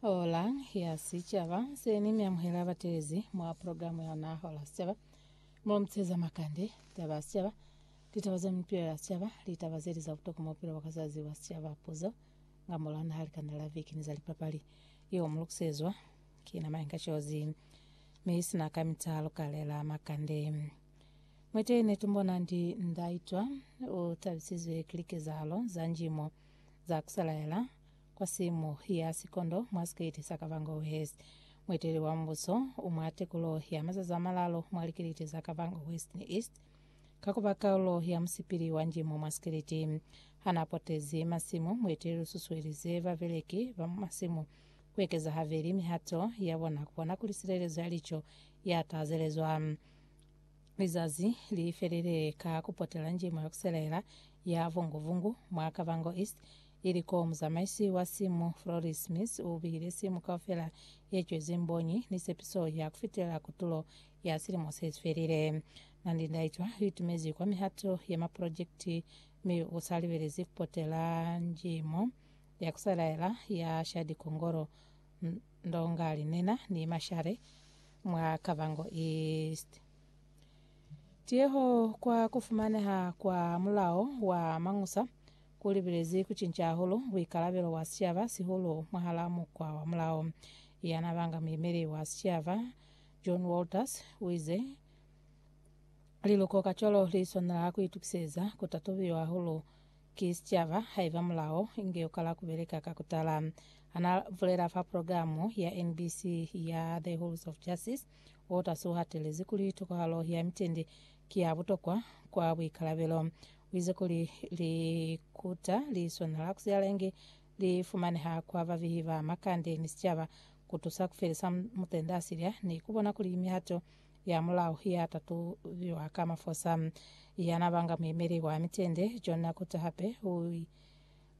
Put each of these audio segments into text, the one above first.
Hola ya Sicaba se ni mi amuhela batelezi mwa programu ya ona Hola Sicaba. Mo mtseza makande, taba ya sicaba, litaba za mipilo ya sicaba, litaba zeli za butokwa mwa bupilo bwa ka zazi bwa sicaba, puzo nga mora naha, likanda la viki ni za lipapali. Yeo mu lukusezwa ki na Mayenka Cozi. Mi sina ka mita lukalela makande. Mwete ne tumbona ndi ndaitwa utabisizwe ki likezahalo za njimo. za ku salaela kwa simu ya sikondo mwa sikeiti sa Kavango West. Mueteleli wa mubuso u mwa tekulo ya mazazi a malalo mwa likiliti za Kavango West ni East ka ku ba kaulo ya musipili wa njimo mwa sikiliti. Ha n'a potezi masimu, mueteleli u susuelize babeleki ba mwa masimu ku ekeza habeli mihato ya bona ku bona kuli silelezo ya lico ya tazelezwa. Lizazi li felile ka ku potela njimo ya ku selaela ya Vungu-Vungu mwa Kavango East, ili koo muzamaisi wa simu Floris Smith u bihile simu kaufela ye cwezi mbonyi ni sepiso ya ku fitelela kutulo ya silimo se si felile. Nandi Ndaitwa u itumezi kwa mihato ya maprojekiti mi u sa libelezi ku potela njimo ya ku selaela ya Shadi Kongolo, Ndonga Linena ni Mashare mwa Kavango East. Tiyeho kwa kufumaneha kwa mulao wa Mañusa ku libelezi kucinca hahulu buikalabelo bwa sicaba, sihulu mwahalaa mukwa wa mulao. Ya n'a banga muyemeli wa sicaba, John Walters, u ize, Liluko kacwalo li swanela ku itukiseza ku tatubiwa hahulu Ki sicaba haiba mulao inge ukala kubeleka ka kutala. Hana bulela fa progilamu ya NBC ya The Halls of Justice, Waters uhatelezi kuli tokohalo ya mitendi ki ya butokwa kwa buikalabelo. Uize kuli likuta li swanela kusialeñi li fumaneha kwa babehi ba makande ni sicaba kutusa kufelisa mutendaasilya ni kubona kuli mihato ya mulao ya tatubiwa ka mafosa ya na banga muemeli wa mitende John Nakuta hape u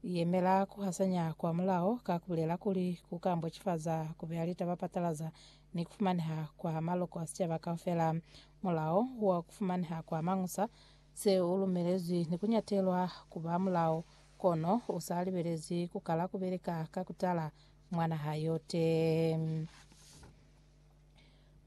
yemela ku hasanya kwa mulao ka ku bulela kuli ku ka mbocifaza ku beya litaba patalaza ni ku fumaneha kwa maloko a sicaba kaufela. Mulao wa ku fumaneha kwa mañusa se u lumelezwi ni ku nyatelwa ku ba mulao, kono u sa libelezwi ku kala ku beleka ka ku tala mwa naha yote.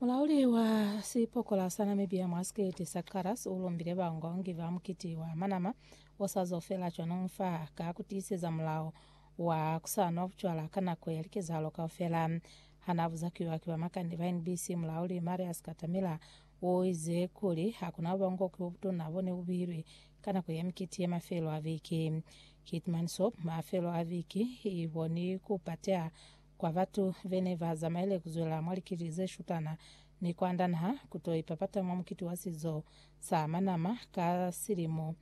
Mulauli wa sipokola sa Namibia mwa sikete sa Karas ulumbile bangongi ba mukiti wa manama osazo fela cwanong fa ka kutiiseza mulao wa kusanwa bucwala ka nako ya likezahalo kaufela. Hana buzakiwa ki bamakande ba NBC, mulauli Marius Katamila uize kuli hakuna bubongoki bobutuna bone bubihilwe ka nako ya mikiti ya mafelo a viki. Keetmanshoop mafelo a viki iboni kupateha Kwa batu bene ba zamaile kuzwela mwa likili ze shutana ni kwanda naha kuto ipapata mwa mukiti wa sizo sa Manama ka silimo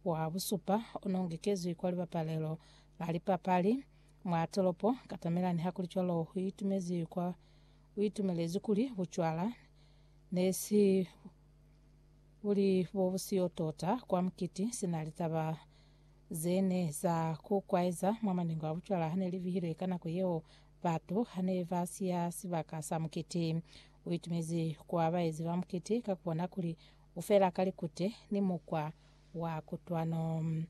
wa busupa ono ngekezwi kwa libapalelo la lipapali mwa tolopo katamela nihakulicwalo huitumezwi kwa uitumelezwi kuli bucwala ne si buli bobusiyo tota kwa mukiti sina litaba ze ne za ku kwaeza mwa maningo a bucwala ha ne li bihilwe ka nako yeo batu ha ne ba siya sibaka sa mukiti. U itumezi kwa baezi ba mukiti ka ku bona kuli u fela ka likute ni mukwa wa kutwano.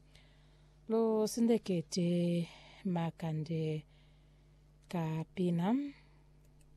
Lu sindekete makande ka pina.